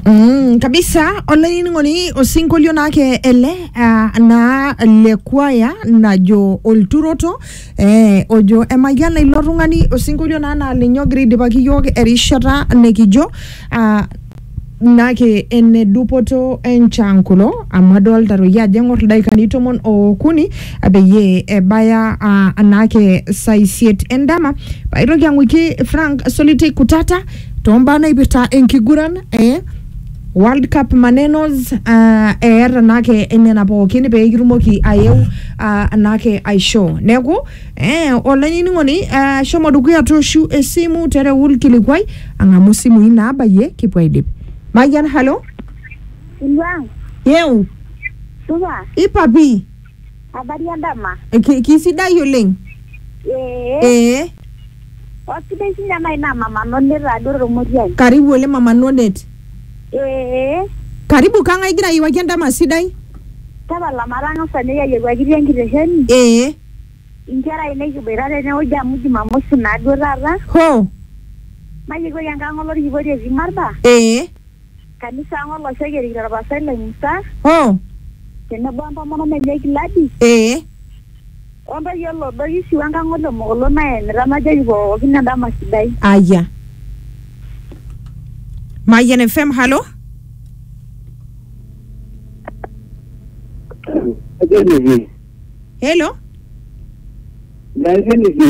Mm, kabisa olainining'oni osinkolio naake ele uh, naa le kwaya najo olturoto eh, ojo emayiana ilo tung'ani osinkolio naa naa linye ogira aidipaki yiok erishata nikijo uh, nake ene dupoto enchan kulo amu adolta toi ajo eng'or ildaikani tomon okuni peyie ebaya uh, naake saa isiet endama paitoki ang'uiki Frank Solitei Kutata Tombaa naipirta enkiguran e World Cup manenos uh, eeta naake nena pookin pee kitumoki ayeu uh, naake aisho. Neeku eh, olainining'oni uh, shomo dukuya toshu esimu tereu ilkilikwai ang'amu simui naabayie kipuo aidip. Mayian halo. Ilwang, Yeu supa, ipapi. Habari ya ndama. Ki- kisidai oleng Ee. ee Osidai sinye ena ina mama none taado tormotiai. karibu oleng mama nonet Ee. karibu kang'ae igira ayiewaki endama sidai Tapala matang'asa ninye ayiewuakiti enkitesheni. ee Inkera ainei kiboita tenewueji amu jumamosi naaduo taata. hoo Mayiewuaki enkang olorkipoti etii Marba. ee Kanisa ang olosek erikito olpastai lai Musa Oh, tenebo o ntomonok enye Giladi ee. o ntoyie o Lodoish we nkang o Lemokolo naenita najoki pookin endama sidai. Aya. Mayian FM, halo. Hello. Hello.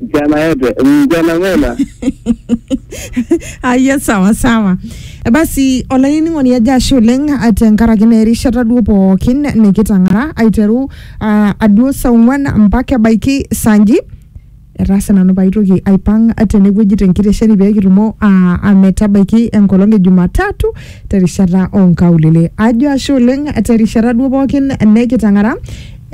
Mchana yote, mchana mwema. aya sawa sawa E basi olainining'oni ajo ashe oleng ah, tenkaraki naa erishata duo pookin nikitang'ara aiteru ah, aduo saa ong'uan mpaka ebaiki saa nji etaase nanu paitoki aipang tenewueji tenkitesheni pee kitumo ah, ah, metabaiki enkolong e jumatatu terishata onkaulele ajo ashe oleng terishata duo pookin nikitang'ara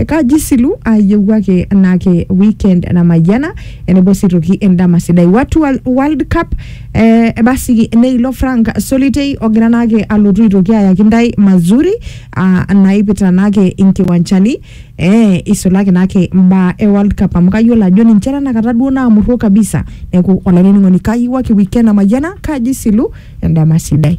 Kaji silu ayieu ake naake weekend namayiana enebo sii toki endama sidai watu wa World Cup eh, basi neilo Frank Solitei ogira naake alotu aitoki ayaki ntae mazuri ah, naipita naake inkiwanchani eh, isulaki naake imbaa e World Cup amu kayiolo ajo ninche tenakata duo naamurro kabisa neeku olainining'oni kayieu ake weekend namayiana kaji silu endama sidai.